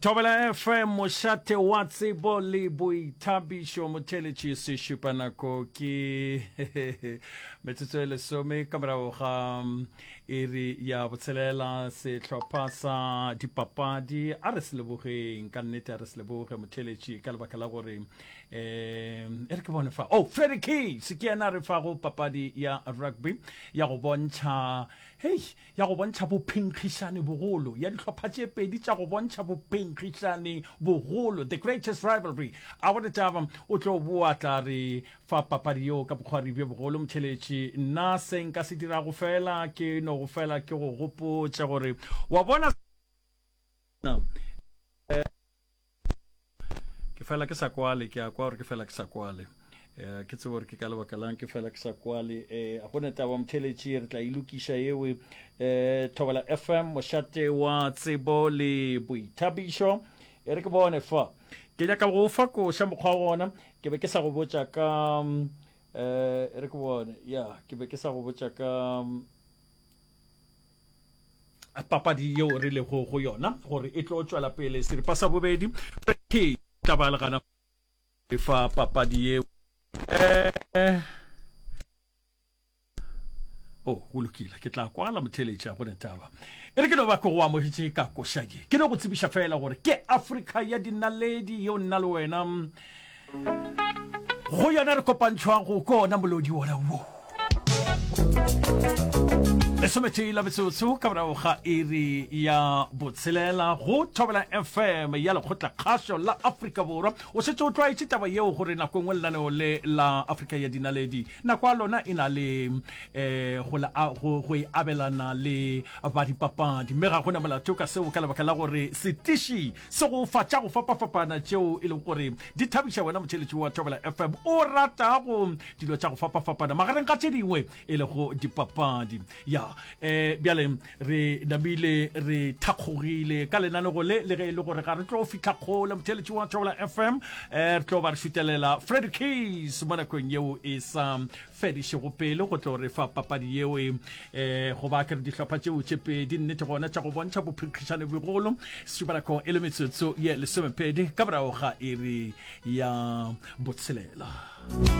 thobela fm mošate wa tsebo le boithabišo motheletši sešupa nako ke metsotso e lesome ka morago ga mm, iri ya botshelela sehlopha sa dipapadi a re se lebogeng ka nnete a re se leboge motheletši ka lebaka la gore um e re ke bone fa oh freddy case ke yena a re fago papadi ya rugby ya go bontšha hei ya go bontšha bophenkgišani bogolo, ya dihlopha tše pedi tša go bontšha bophenkgišani bogolo, the greatest rivalry. A go Letaba o tlo boa tla re fa papadi yeo ka bokgwari bjo bogolo, Motšheletši? Nna se nka se dirago feela ke no go fela ke go gopotše gore, wa bona, ke fela ke sa kwale ke a kwa gore ke fela ke sa kwale um ke tsebo gore ke ka lebaka lang ke fela ke sa kwale um a gone taba motheletši re tla ilokiša e ewe um thobela fm mošate wa tsebo le boithabišo e re ke bone fa ke nyaka go fa koša mokgwa gona ke be ke sa go botša ka um e re ke bone ya ke be ke sa go botša ka um, papadi yeo re lego go yona gore e tlo tšwela pele seripa sa bobedi ke tla ba le gana fa papadi yeo eh o oh, go lokile ke tla kwala motheletša go netaba e re ke no ba ke go amogetse ka košadi ke no go tsebiša fela gore ke afrika ya dinaledi yeo nna le wena go yona re kopantšhwago ko ona molodi wona wo lesometee la metsotso ka morago ga iri ya botshelela go thobela fm ya lekgotla kgašo la afrika borwa o setse o tlwaetse taba yeo gore nako engwe lenaneo le la afrika ya dinaledi nako ya lona e na le um go e abelana le badipapadi mme ga gona molato ka seo ka lebaka la gore setiši Sego fa tša go fapafapana tšeo e lego gore di thabiša wena motheletši wa Thobela FM o ratago dilo tša go fapafapana magareng ga tše dingwe e lego dipapadi. Ya, um bjale re namile re thakgogile ka lenanego le le ge e le gore ga re tlo fihla kgole motheletši wa Thobela FM, um re tlo ba re šutelela Freddy Case mo nakong yeo e sa fedišego pele go tlo re fa papadi yeo um eh, go ba kere dihlopha tšeo tše pedi nnete gona tša go bontšha bophikgišane bogolo setubalako e le metsotso ye lesomepedi ka morago ga iri ya botshelela